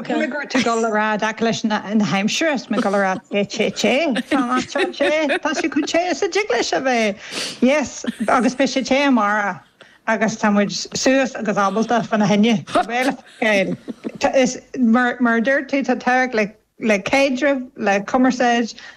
Bhuel, go raibh tú ag dul a rá i dtaca leis na haimsire is mé ag dul a rá te te te fan an teán sé tá sé chomh te is a dtig leis a bheith. Yes, agus beidh sé te amárach agus tá muid suas agus ábalta fan na hAoine. Gael, is mar a dúirt tú, tá tábhacht le caidreamh, le cumarsáid,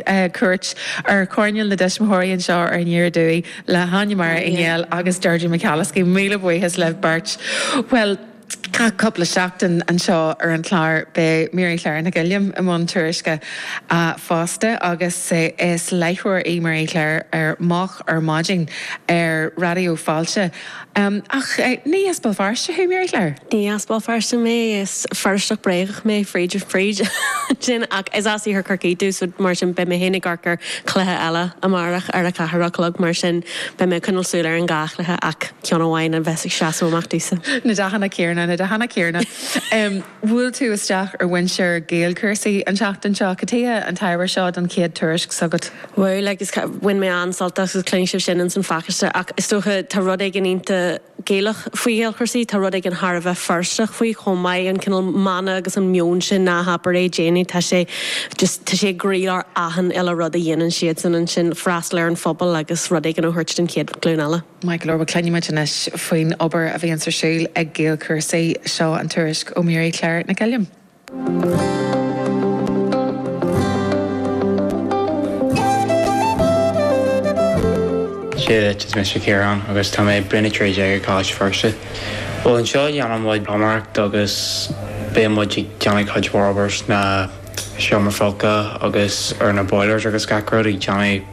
cuairt ar choirnéal na dtuismitheoirí anseo ar an Aoire Dubh le hÁine Máire Uí Néill agus Deirdre McAliskey, míle buíochas libh beirt! Bhuel, gach cúpla seachtain anseo ar an chlár beidh Mary Clare Nic Uilliam i mbun tuairisce fosta agus is láithreoir í Mary Clare ar Moch ar Maidin ar Raidió Fáilte. Ach ní as Béal Feirste thú, Mary Clare? Ní as Béal Feirste mé, is Feirsteach bréagach mé fríd is fríd. Sin, ach is as iarthar Chorcaí domh, so mar sin beidh mé féin ag amharc ar chluiche eile amárach ar a ceathair a chlog, mar sin beidh mé ag coinneáil súil ar an dhá chluiche ach ceann amháin a bheas ag seasamh amach domhsa. Na dathanna céarna, na dathanna céarna. Bhuail tú isteach ar mhuintir GaelChúrsaí an tseachtain seo. Cad chuige an t-ábhar seo don chéad tuairisc s'agat? Bhuel, agus bhain mé an-sult as agus cluinfidh sibh sin ins an phacáiste, ach is dócha, tá rud éigin iontach Gaelach faoi GhaelChúrsaí, tá rud éigin thar a bheith Feirsteach faoi chomh maith, an cineál mana agus an meon sin 'ná habair é, déan é', tá sé just, tá sé i gcroílár achan uile rud a dhéanann siadsan ansin, freastal ar an phobal agus rud éigin a thabhairt don chéad ghlúin eile. Maith go leor, bhuel. Cluinimid anois faoin obair a bhíonns ar siúl ag GaelChúrsaí. Seo an tuairisc ó Mary Clare Nic Uilliam. So is mise Ciarán agus tá mé i mbliain a trí déag ag Coláiste Feirste. Bhuel anseo dhéanann muid pluiméireacht agus bíonn muid ag déanamh cuid mhór obair sna seomra folctha agus ar na boilers agus gach rud ag déanamh